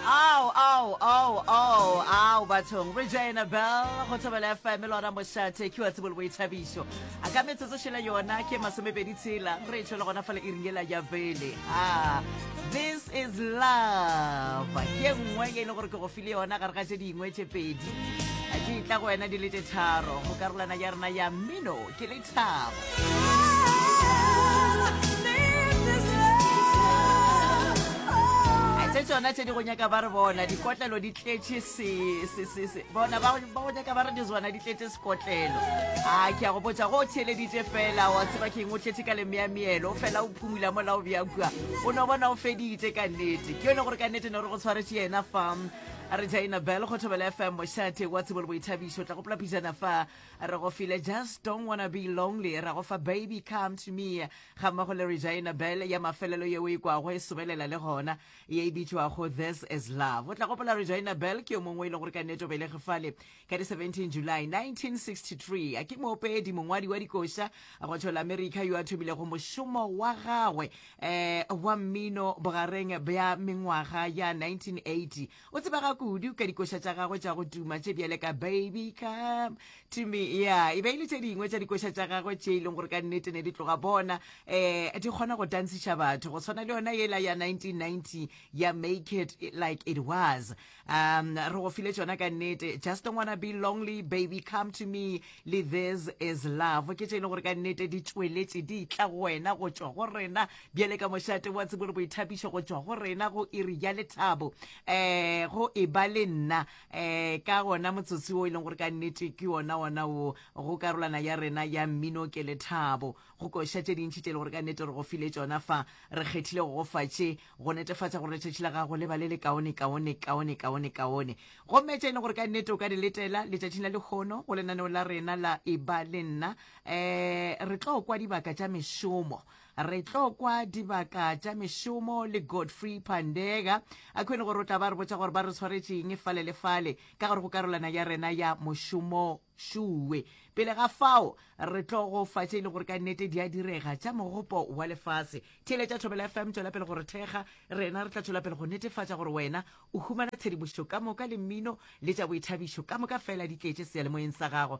Ao, ao, ao, ao, ao, bathong. Regina Bell, go thobela FM, le ona mošate, ke wa tsebo le boithabišo. A ka metsotso šele yona, ke masomepedi tshela, re tšho le gona fela e ringela ya bele. Ah, this is love. Ke nngwe e le gore ke go file yona, gare ga tše dingwe tše pedi. Di tla go wena di le tše tharo, go karolana ya rena ya mmino. Ke le se tsona tse di go nyaka ba re bona dikotlelo di tletše bona ba go nyaka ba re dizwana di tletše sekotlelo a ke ya go botsa go o theeleditše fela wa tseba keng o tletše ka lemeameelo fela o phumula mola o bja kua o no bona o feditše ka nnete ke yone gore ka nnete ne re go tshwaretše yena fa re jaina bel go thobela fm mošate wa tsebo le boithabišo tla gopola pijana fa Re go file Just Don't Wanna Be Lonely, ra go fa Baby Come To Me, ga mmogo le Regina Bell ya mafelelo ye o e kwago e sobelela le gona, ye e bitšwago This Is Love. O tla gopola Regina Bell ke yo mongwe e le gore ka nnete o belege fale ka di 17 July 1963. A ke moopedi, mongwadi wa dikoša go tšhola Amerika yo a thomilego mošomo wa gagwe eh, wa mmino bogareng bja mengwaga ya 1980 O tsebega kudu ka dikoša tša gagwe tša go tuma tše bjale ka Baby Come to Me. Ya, e be e le tše dingwe tša dikoša tša gagwe tše e leng gore ka nnete ne di tloga bona um di kgona go tantsiša batho go tshwana le yona yela ya 1990 ya Make It Like It Was. Um re go file tšona ka nnete Just Don't Wanna Be Lonely, Baby Come to Me le This Is Love ke tše e leng gore ka nnete di tšweletše di tla go wena go tšwa go rena bjale ka mošate wa tsebo le boithapišo go tšwa go rena go iri ya lethabo um go e ba le nna um ka gona motsotsi wo e leng gore ka nnete ke ona ona wo go karolana ya rena ya mmino ke lethabo go koša tše dintšhi tše e le gore ka nnete re go file tšona fa re kgethile go gofa tše go netefatša gore letšatši la gago le ba le le kaone kaone kaone kaone kaone gomme tše e leng gore ka nnete o ka di letela letšatšing la lekgono go lenaneo la rena la e ba le nna um re tlo kwa dibaka tša mešomo Re tlo kwa dibaka tša mešomo le Godfrey Pandega. A khwene gore o tla ba re botša gore ba re tshwaretšeng fale le fale ka gore go karolana ya rena ya mošomo šuwe. Pele ga fao, re tlo go fa tše e le gore ka nnete di a direga tša mogopo wa lefase. Theeletša Thobela FM, tšwela pele gore thekga. Rena re tla tšwela pele go netefatša gore wena o humana tshedimošo ka moka le mmino le tša boithabišo ka moka fela di tletše seyalemoyeng sa gago.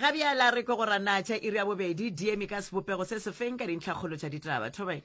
ga bjala re ko go ranatša iri ya bobedi diemi ka sebopego se sefeng ka dintlhakgolo tša ditaba thobae